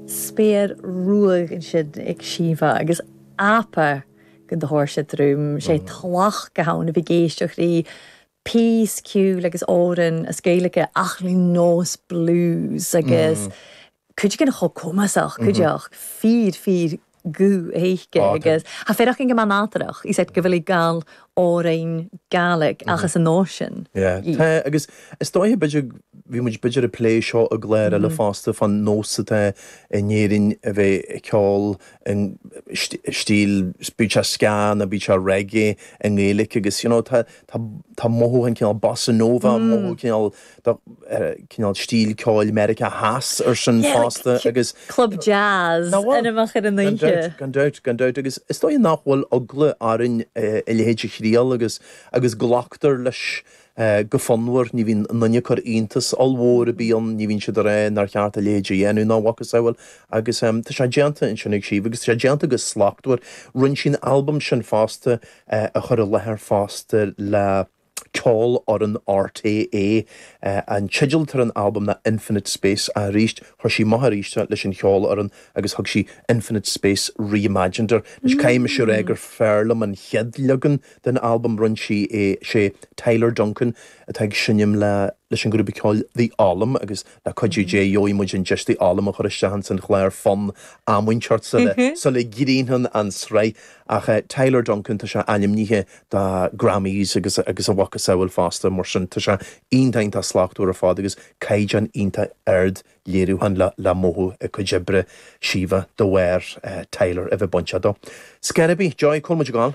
spéir ruadh ansin ag siabhadh agus apha go dtabhair sé druim sé tlacht go habhann a bhí ag éisteach rí peace, ceoil agus amhran as Gaelige ach rí nós blues agus cuid again chomh cumasach, cuid each fíor fíor guth aice agus tha e a' faireachdainn gu math nàdarrach is gu bheil i a' gabhail òran Gàidhlig ach anns an nòs sin í. Tá, agus is dóiche b'fhéidir, bhí muid b'fhéidir ag plé seo i gcláir eile fosta fán nós atá in Éirinn a bheith ag ceol i stíl, bíodh sé ska nó bíodh sé reggae i nGaeilic agus you know tá tá mothú an cineál bossa nova, mothú cineál Tá cineál stíl ceoil Mheiriceá Theas ar sin fosta agus. Club jazz anmoch air an oidhche. Gan dabht, gan dabht agus is dóigh nach bhfuil eagla orainn a leithéid a thriail agus agus glactar leis go fonnmhar, ní bhíonn éinne ag cur iontas ollmhór ar bith ann, ní bhíonn siad ag rá nár cheart a leithéid a dhéanamh ná a mhacasamhail agus tá sé déanta ansin ag Síomha agus tá sé déanta go slachtmhar. Rinne sí an albam sin fosta a chur i láthair fosta le. ceolfhoireann RTÉ an teideal atá ar an albam ná Infinite Space ach arís chuir sí amach arís é leis an cheolfhoireann agus thug sí Infinite Space Re-imagined air. Anois caithfidh mise a rá gur fearr liom an chéad leagan den albam rinne sí é. Is é Tyler Duncan atá ag seinm leis an grúpa ceoil The Olllam agus Le cuidiú Dé gheobhaidh muid an deis The Olllam a chur isteach ins an chlár fonn am inteacht sula sula gcríochnaíonn an sraith. Ach Tyler Duncan, tá sé ainmnithe do Grammys agus agus a mhacasamhail fosta, mar sin tá sé iontach iontach slachtmhar ar fad agus caighdeán iontach ard léiriúcháin le le mothú i gcuid oibre Síomha de bharr Tyler a bheith bainteach dó. Scor ar bith, Joy, cá bhfuil muid ag gabháil.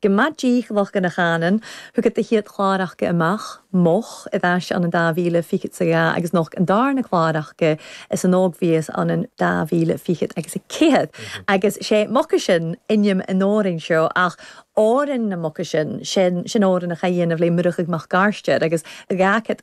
Go maith díth lucht na Chanann, thugadh do chéad chláracha amach, moch, i bhfeis an 2000 fichead sa gha agus nocht an darna cláracha is an óg bhíos an 2000 fichead agus a céad agus sé mucaisin inim an fhoireann seo ach fhoireann na mucaisin, sin fhoireann a chaith dhéanamh lé Muireadhaigh Mac Gairsteir agus gha cit.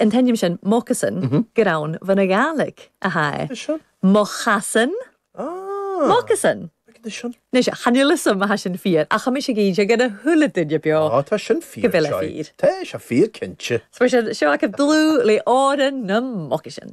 an t-ainm sin, moccasin, gur ann bhon a' Ghàidhlig a thàinig e. Anois sin. mo chasan, Ah. moccasin. Anois sin. Anois, chan fhuil 'fhios a'm a tha sin fíor, ach tá mise ag inse go na chuile duine beo. Á, tá sin fíor, Go bhfuil sé sure. fíor. Tá sé fíor cinnte. So, mar sin, seo agaibh Dlù le Òran nam Moccasin.